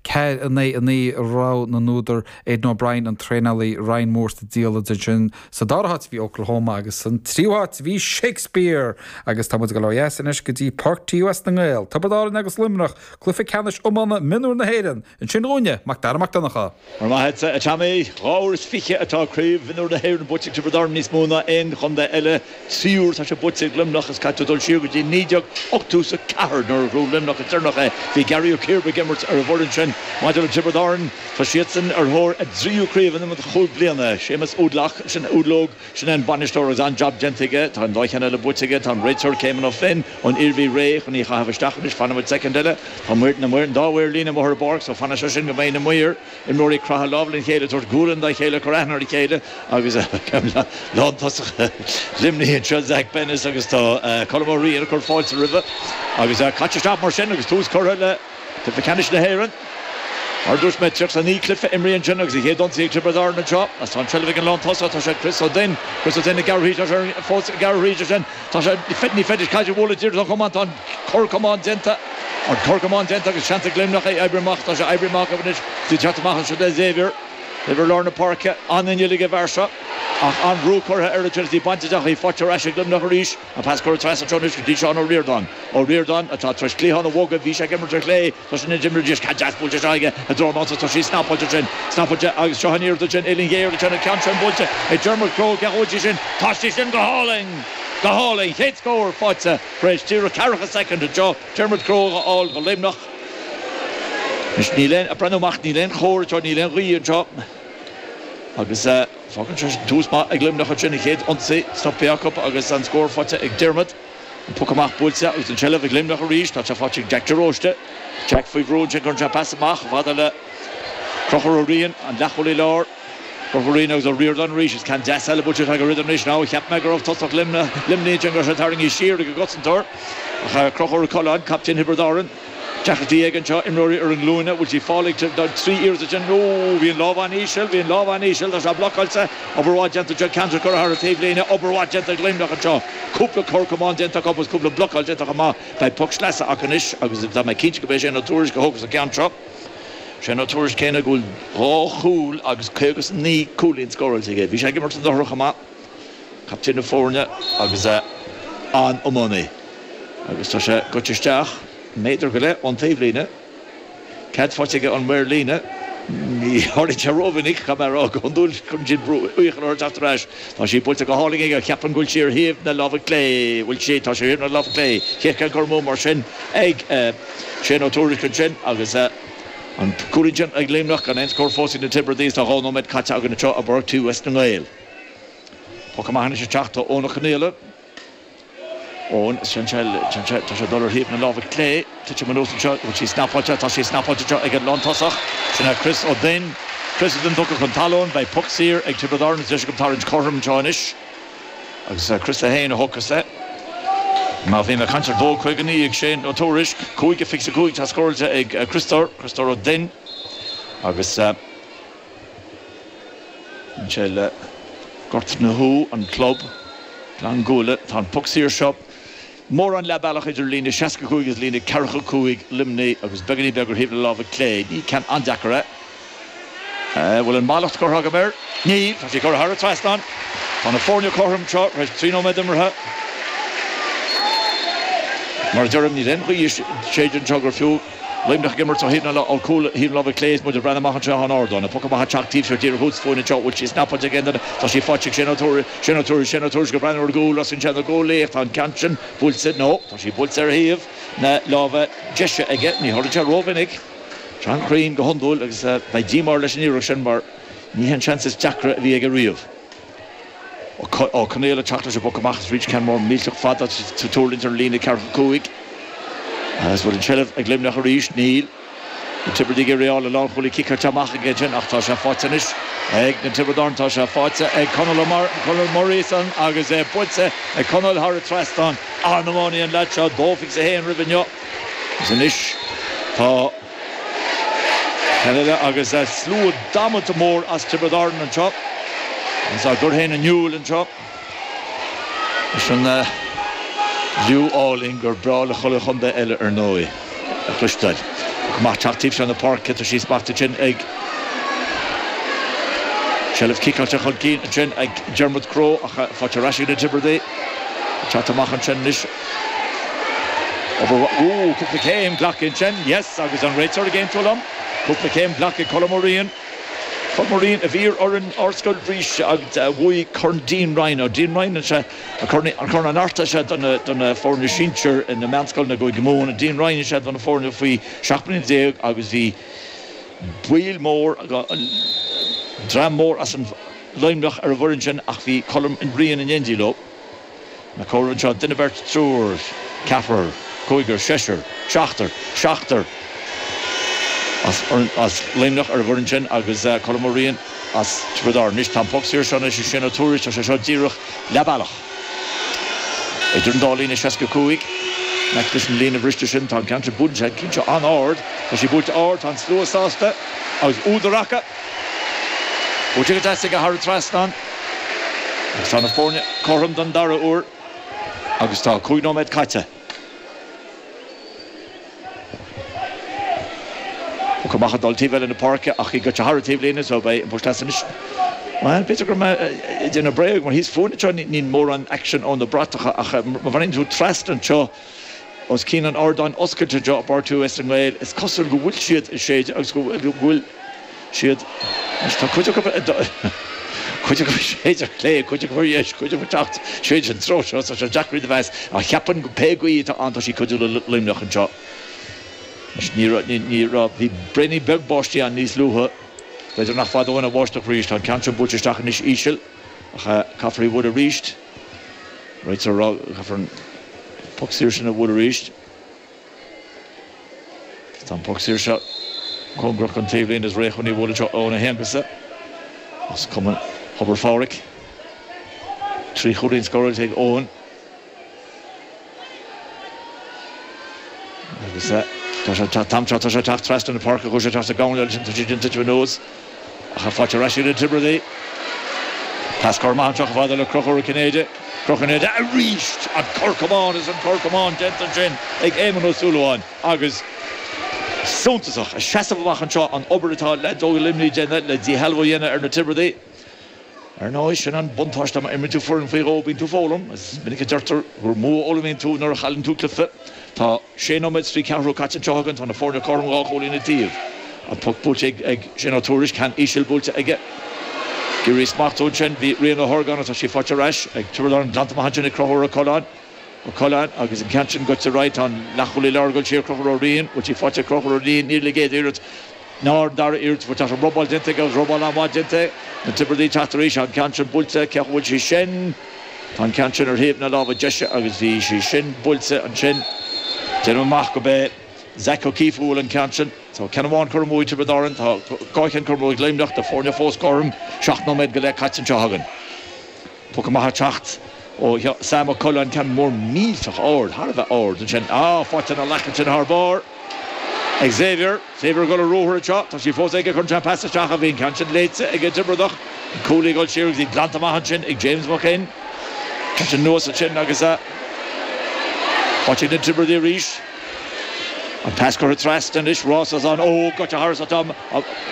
Ceathair in aghaidh a naoi rogha na n-údar, Aidan O'Brien an traenálaí, Ryan Moore sa diallait. Ansin sa dara háit bhí Oklahoma agus san tríú háit bhí Shakespeare! Agus tá muid ag dul ó dheas anois go dtí páirc TUS na nGael, Tiobraid Árann agus Luimneach, cluiche ceannais iomána mionúr na hÉireann. Ansin dhúinne, Mac Dara Mac Donncha. Go raibh maith agat, a Tommy? Dhá uair is fiche atá Craobh Mhionúr na hÉireann buaite ag Tiobraid Árann, níos mó ná aon chontae eile. Trí uair atá sé buaite ag Luimneach, is caithfidh tú dul siar go dtí 1984 nuair a bhuaigh Luimneach go deireanach é. Bhí Gearóid Ó Ciarba ag imirt ar an bhfoireann sin. Maidir le Tiobraid Árann, tá siadsan ar thóir a dtríú craobh in imeacht chúig bliana. Séamus Woodlock, sin é Uadlóg, sin é an bainisteoir agus an-jab déanta aige. Tá an dá cheann eile buaite aige. Tá an réiteoir Caymon Ó Floinn ón Iarmhí réidh chun í a chaitheamh isteach anois. Fanfaimid soicind eile. Tá na maoir, an dá mhaor líne, amuigh ar an bpáirc so fanfaidh sé sin go mbeidh na maoir. Imreoirí ag craitheadh lámh lena chéile, tabhairt gualainn dá chéile, cur aithne ar a chéile agus lántosach Luimnigh anseo, Zach Bennis agus tá Colm Ó Riain ag cur fáilte roimhe agus caite isteach mar sin agus tús curtha le Cluiche Ceannais na hÉireann. Mar a dúirt mé, triocha a naoi cluiche imrithe ansin agus a chéad ionsaí ag Tiobraid Árann anseo. Tá an tseilbh ag an lántosach, tá sé ag Chris Ó Duinn, Chris Ó Duinn ag gearradh arís agus fós ag gearradh arís ansin, Tá sé ní féidir caid a bhualadh díreach den chamán. Tá an cor camán déanta. An cor camán déanta agus seans ag Luimneach í a oibriú amach. Tá sí oibrithe amach acu anois. Í ag teacht amach anseo le Xavier, Xavier lár na páirce. An-inneall ag an bhfear seo, ach an-bhrú curtha air ansin agus í bainte dhe ach í faighte ar ais ag Luimneach arís. An pas curtha trasna anseo anois go dtí Seán Ó Riordáin. Ó Riordáin, atá tar éis cliathán a bhogadh, bhí sé ag imirt ar chlé. Tá sin ag imirt ar dheis ceann deas buailte anseo aige i dtreo an ansa tá sí snap buailte sin snap buailte agus seo aniar duit sin uillinn ghéar duit sin an ceann sin buailte ag Dermot Crowe ceann bhuailte sin tá sí sin go hálainn go hálainn chéad scór faighte tar éis díreach ceathracha soicind anseo Dermot Crowe á fháil do Luimneach anois níl aon ag breathnú amach níl aon chóir anseo níl aon ghaoth anseo agus fágann sé sin tús maith ag Luimneach ansin an chéad ionsaí stoptha acu agus an scór faighte ag Dermot. An poc amach buailte agus an tseilbh ag Luimneach arís, tá sí faighte ag Jack de Róiste. Jack faoi bhrú ansin, cuireann sé pas amach, chomh fada le Conchúr Ó Riain, an leathchúlaí láir. Conchúr Ó Riain agus Ó Riordáin arís agus ceann deas eile buailte ag Ó Riordáin anois. Now, cheap mé go raibh tosach Luimnigh ansin, go raibh sé tarraingthe siar ag an gcosantóir ach Conchúr Ó Coileáin, captaen Thiobraid Árann, Ceathrar déag anseo, imreoirí ar a nglúine, bhfuil sí faighte don tríú iarraidh ansin, nó bhí an lámh an-íseal, bhí an lámh an-íseal, tá sé blocáilte, obair mhaith déanta anseo, ceann de curtha thar an taobhlíne, obair mhaith déanta ag Luimneach anseo, cúpla cor camán déanta acu agus cúpla blocáil déanta chomh maith, beidh poc sleasa acu anois agus tá mé cinnte gurb é Shane Ó Tuairisg a thógfas an ceann seo, Shane Ó Tuairisg céanna go bhfuil dhá chúl agus caoga 's naoi cúilín scóráilte aige, bhí sé ag imirt anuraidh chomh maith. captaen na foirne agus é an-iománaí agus tá sé goite isteach méadar go leith ón taobhlíne. Cead faighte aige ón maor líne. Ní tharlaíonn sé rómhinic, caithfidh mé a rá. Go hiondúil cuireann siad iachall orthu teacht ar ais. Tá sí buailte go hálainn aige. Cheapfainn go bhfuil sí ar thaobh na láimhe clé. Bhfuil sí, tá sí ar thaobh na láimhe clé. An chéad cheann den chluiche mar sin ag Shane Ó Tuairisc ansin agus an cúilín sin ag Luimneach gan aon scór fós ag na Tiobradaigh is tá dhá nóiméad caite againn anseo i bPáirc TUS na nGael. Poc amach anois ag teacht ó na coinníolla ón Central. Tá sé ag dul ar thaobh na láimhe clé. Titim anuas anseo. Bhfuil sí snapaíte? Tá sí snapaíte anseo ag an lántosach. Sin é Chris Ó Duinn. Chris Ó Duinn tugtha chun talún. Beidh poc saor ag Tiobraid Árann. Is deis acu tarraingt cothrom anseo anois. Agus Chris é féin a thógfas é. Má bhím ag caint ar 2:59 ag Shane Ó Tuairisc. Cúig a sé a cúig atá scóráilte ag Christóir, Christóir Ó Duinn, agus. Bíonn sé le Gort na hUí, an club, Gleann an Ghuail. Tá an puc saor seo mórán leathbealach idir líne 65 agus líne ceathracha a cúig Luimnigh agus beagáinín beag ar thaobh na láimhe clé. Ní ceann an-deacair é. An bhfuil an mallacht curtha agam air? Níl, tá sí curtha thar an trasnán. Tá na foirne cothrom anseo tar éis trí nóiméad imeartha. Mar a deirim, níl aon ghaoth ag séideadh anseo gur fiú. Luimneach ag imirt isteach sa gcúl ar thaobh na láimhe clé is muid ag breathnú amach anseo ón ardán. An poc amach ag teacht an taobh seo díreach os fúinn anseo bhfuil sí snapáilte ag aon duine tá sí faighte ag Shane Ó Tuairisc, Shane Ó Tuairisc ag breathnú ar an gcúl os cionn na gcuaillí ach tá an ceann sin buailte nó tá sí buailte ar thaobh na láimhe deise aige. Ní tharlaíonn sé ró-mhinic. Tá sé an-chruinn go hiondúil agus beidh díomá air leis an iarracht sin mar ní shin an seans is deacra a bhí aige riamh. Ó Conghaola ag teacht leis an bpoc amach is arís ceann mór millteach fada ag tuirlingt ar líne ceathracha a cúig. Agus bhfuil an seilbh ag Luimneach arís? Níl. Na Tiobradaigh ag réabadh an lánchúlaí ciceáilte amach ag Egan ach tá sé faighte anois ag Tiobraid Árann. Tá sé faighte ag Conall Conall Muiríosan agus é buailte ag Conall thar an trasnán. An-iománaí an lead seo. Dó faighte aige féin roimh inniu. Agus anois tá. Ceann eile agus slua damanta mór as Tiobraid Árann anseo agus á gcur féin in iúil anseo leis an liú álainn gur breá le chuile chontae eile, ar ndóigh, a chloisteáil. Poc amach ag teacht an taobh seo na páirce, tá sí smachta ansin ag seilbh ciceáilte chun cinn ansin ag Dermot Crowe ach faighte ar ais ag na Tiobradaigh ag teacht amach ansin anois. Ooh, cúpla céim, glactha ansin. Yes, agus an réiteoir ag aontú liom. Cúpla céim, glactha. Colm Ó Riain. Colm Ó Riain, a bhí ar fhoireann Ardscoil Rís agus a bhuaigh Corn Dean Ryan. An Dean Ryan, is é an corn, Corn an Artaigh, is é do na foirne sinsir na meánscoileanna i gCúige Mumhan. An Dean Ryan, is é do na foirne faoi 17 mbliana agus bhí baill mór, dream mór as an Luimneach ar an bhfoireann sin ach bhí Colm Ó Riain in éindí leo. Á gcomhaireamh anseo, duine beirt triúr ceathrar cúigear seisear seachtar seachtar as Luimneach ar an bhfoireann sin agus Colm Ó Riain as Tiobraid Árann anois tá an poc saor seo anois ag Shane Ó Tuairisc tá sé seo díreach leath bealach idir an dá líne seasca cúig meic leis an líne bhriste sin tá an ceann sin buailte cinnte an-ard tá sí buailte ard tá an slua sásta agus údar acu. Buailte go deas aige thar an trasnán agus tá na foirne cothrom don dara uair agus tá cúig nóiméad caite. Poc amach ag dul taobh eile na páirce ach í goite thar an taobhlíne so beidh an poc sleasa anois. Bhuel, b'fhéidir go raibh mé ag déanamh bréag mar thíos fúinn anseo níl mórán action ó na bratacha ach má bhreathnaíonn tú trasna anseo, Os cionn an ardáin oscailte anseo i bPáirc TUS na nGael, is cosúil go bhfuil siad ag séideadh agus go bhfuil siad Anois tá cuid acu ag dul, cuid acu ag séideadh ar chlé, cuid acu ar dheis, cuid acu ag teacht tríd an treo seo, tá sé deacair iad a mheas, ach cheapfainn go pé gaoth atá ann tá sí ag cuidiú le Luimneach anseo. Anois ní raibh, ní raibh, bhí braonaí beag báistí ann níos luaithe, b'fhéidir nach fada uainn an bháisteach arís, tá an ceann seo buailte isteach anois íseal, ach caithfear í a bhualadh arís. Réiteoir ag rá go gcaithfear an poc saor sin a bhualadh arís. Tá an poc saor seo cóngarach don taobhlíne agus réidh chun í a bhualadh anseo Eoin Ó hAonghusa as cumann Thobar Phádraig. Trí chúilín scóráilte ag Eoin. Tá sé ag teacht am tráth, tá sé ag teacht trasna na páirce, chuaigh sé ag teacht ag am eile sin, tá sé ag déanamh tuitim anuas. Ach í faighte ar ais ag na Tiobradaigh. Pas curtha amach anseo chomh fada le Conchúr Ó Cinnéide. Conchúr Ó Cinnéide arís! An corr camán is an corr camán déanta ansin ag Éamonn Ó Súilleabháin agus suntasach ag seasamh amach anseo an obair atá leaids Luimnigh a dhéanamh le díshealbhú a dhéanamh ar na Tiobradaigh. Ar ndóigh, sin an buntáiste má imríonn tú foireann faoi dhó, bíonn tú ag foghlaim. Is minic a deirtear gur mó a fhoghlaimíonn tú nuair a chailleann tú cluiche. Tá sé nóiméad 's trí ceathrú caite anseo againn, tá na foirne cothrom dhá chúilín an taobh. An poc buailte ag Shane Ó Tuairisc, ceann íseal buailte aige. Ag iarraidh í a smachtú ansin, bhí Rian Ó hArgáin, ach tá sí faighte ar ais ag Tiobraid Árann, glanta amach ansin ag Conchúr Ó Coileáin. Ó Coileáin, agus an ceann sin goite thairis, tá an leathchúlaí lárnach ag goil siar Conchúr Ó Riain, bhfuil sí faighte ag Conchúr Ó Riain, níl ar an gcéad iarraidh, ná ar an dara iarraidh, bhuel tá an robáil déanta aige agus robáil an-mhaith déanta aige, na Tiobradaigh ag teacht arís, tá an ceann sin buailte, cá bhfuil sí sin, tá an ceann sin ar thaobh na láimhe deise agus bhí sí sin buailte ansin, déanaim amach go b'é Zac Ó Cíofa a bhuail an ceann sin, so ceann amháin curtha amú ag Tiobraid Árainn, tá dhá cheann curtha amú ag Luimneach, na foirne fós cothrom, seacht nóiméad go leith caite anseo againn. Poc amach ag teacht ó Sam Ó Coileáin, ceann mór millteach ard, thar a bheith ard ansin. Á, faighte ina ghlac ansin thar barr ag Xavier. Xavier ag dul ar ruathar anseo. Tá sí fós aige chun cinn pas isteach ach bhí an ceann sin léite ag an Tiobradach. An cúlaí ag dul siar agus í glanta amach ansin ag James Mac Fhinn. Tá sé anuas ansin agus faighte ag na Tiobradaigh arís. An pas curtha trasna anois, rás as an Óg, goite thairis ach tá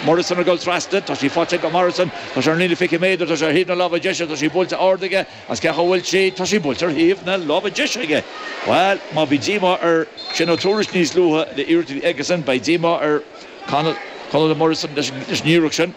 Morrison ag dul trasna, tá sí faighte ag Morrison, tá sé ar an líne fiche méadar, tá sé ar thaobh na láimhe deise, tá sí buailte ard aige, ach cá bhfuil sí, tá sí buailte ar thaobh na láimhe deise aige, bhuel má bhí díomá ar Shane Ó Tuairisg níos luaithe leis an iarracht a bhí aigesan, beidh díomá ar Conall, Conall Morrison leis an iarracht sin.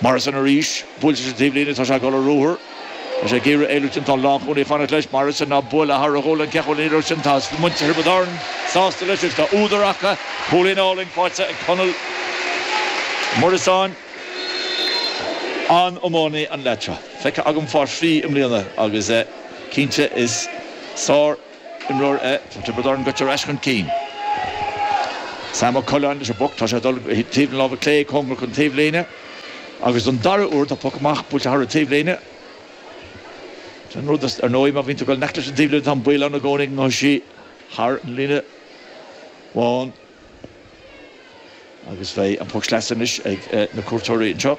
Morrison arís. Buailte leis an taobhlíne, tá sé ag dul ar ruathar. Tá sé ag iarraidh éalú ach tá an lánchúlaí ag fanacht leis. Morrison, á bualadh thar a ghualainn. Cén chaoi a bhfuil an iarracht sin? Tá muintir Thiobraid Árann sásta leis agus tá údar acu. Cúilín álainn faighte ag Conall Muireasáin. An-iománaí an leaid seo. Feicthe agam faoi thrí i mbliana agus cinnte is sár. imreoir é. Tá Tiobraid Árann goite ar ais chun cinn. Sam Ó Coileáin leis an bpoc. Tá sé ag dul go dtí taobh na láimhe clé, cóngarach don taobhlíne. Agus don dara uair tá poc amach buailte thar an taobhlíne. Sin rud é, ar ndóigh, má bhíonn tú ag dul in aice leis an taobhlíne, tá an baol ann i gcónaí go ngabhfaidh sí thar an líne bhán. Agus beidh an poc sleasa anois ag na cuairteoirí anseo.